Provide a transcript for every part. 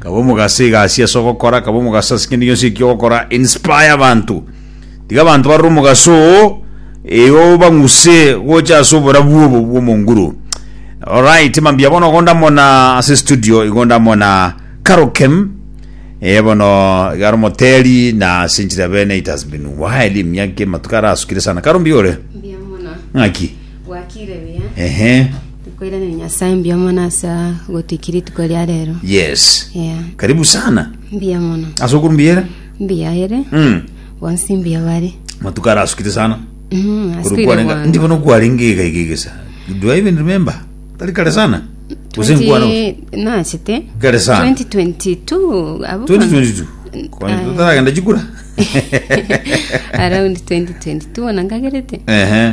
Kaba omogaso egasi ase ogokora, kaba omogaso ase kende gionsi eki ogokora, inspire abanto. Tiga abanto barore omogaso oo, eyo obang'use gocha ase oborabu obo bw'omonguru. Alright, mambia bono igo ndamona ase studio, igo ndamona Karokem, eh, bono igaro moteri na ase enchera bene it has been while emiaka ematuko arasukire sana. Karo mbiore? Mbuya mono. Ng'aki? Gwakire buya. Ehe. Nkoiraneria Nyasae mbuya mono ase gotuika rituko ria rero. Yes. Yeah. Karibu sana. Mbuya mono. Ase okuru mbuya ere? Mbuya ere. Mm. Bonsi mbuya bare. Matuko ara asukite sana. Mm, asukire kwarenge. bwango. Ndibo no kwarenge iga iga iga sana. Do I even remember? Tari kare sana. Use nkwana. 20 nachete Kare sana. 2022 abo 2022. Kwani Ah, tutaragenda chikura? around 2022 ona nkagerete Ehe.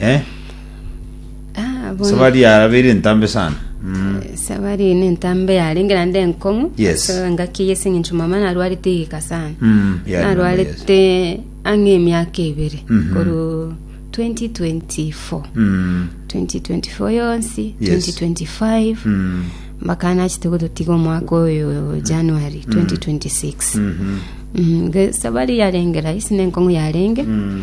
Eh? Ah, bono- Sabari yarabeire ntambe sana. Mm. sabari eye nentambe yarenge naende enkong'u Yes. So, engaki eye eseng'encho mama narwarete igika sana Mm. yeah, I remember, yes. narwarete ang'e emiaka ebere Mhm. koru 2024 Mm. 2024 yonsi Yes. 2025 Mm. mpaka nachete gototiga omwaka oyo january 2026 Mhm. Mm, ge- sabari yarengera isi nenkong'u yarenge Mm.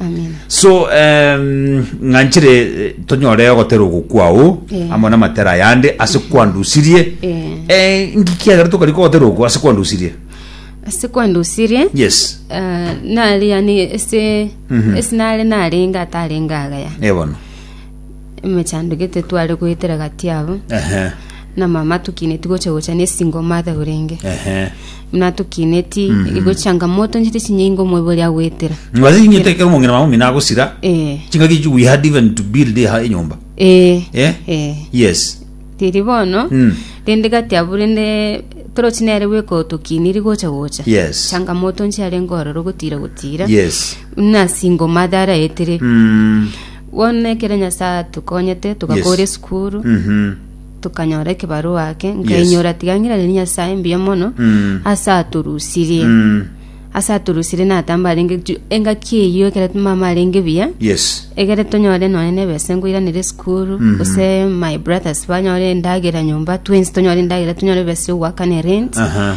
Amina. so em, ng'anchire eh, tonyore ogotera ogokwa oo Eh. amo namatera ayande ase kwandusirie Eh. Eh, ngikiagera tokari kogotera oko ase kwandusirie Ase kwandusirie yes eh, nari yani ese Mhm. ese nare narenga atarenga agaya ebono emechandugete tware goetera gati abo ehe na mama tukineti gocha gocha nesingoma athe orenge ehe Buna tokineti igo changamoto nchete chinyingi ngo moibori agwetera. Ngwaze ing'ete ekero omong'ina mama omino agosira Eh. chingaki echi we had even to build eha enyomba Eh. Eh? Eh. yes Tiri bono. Mm. Rende gati abu rende torochi nere bweka otokiniri gocha gocha. Yes. Changamoto nchiare ngororo gotira gotira. yes Buna single mother araetere. mm. Bono ekero Nyasaye atokonyete togakora Yes. esukuru. mhm tokanyora ekebarua ake Yes. nkainyora tiga ng'irane Nyasae mbuya mono Mm. ase atorusirie Mm. ase atorusirie natamba arenge ju- engaki eyio ekere mama arenge buya Yes. egere tonyore nonye nebese ngoiranere esukuru Mhm. gose my brothers banyore endagera nyomba twins tonyore endagera tonyore ebese yo goakana erent Aha.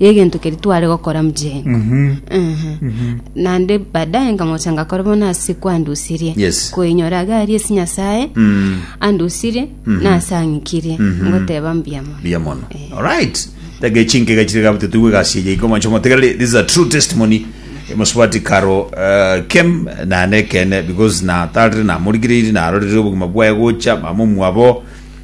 y'egento keria tware gokora mojeni. Naende baadaye nkamocha ngakora bono ase kwandusirie Yes. koinyora iga aria ase Nyasae Mm. andusirie nase ang'ikirie ngoteba mbuya mono. buya mono alright tega echinkega chire gabute tuigwe egasi eye iko mancho motegerere this is a true testimony mosubati karo uh, kem nane kene because natarire namorigireiri narorire obogima bwaye gocha mama omwabo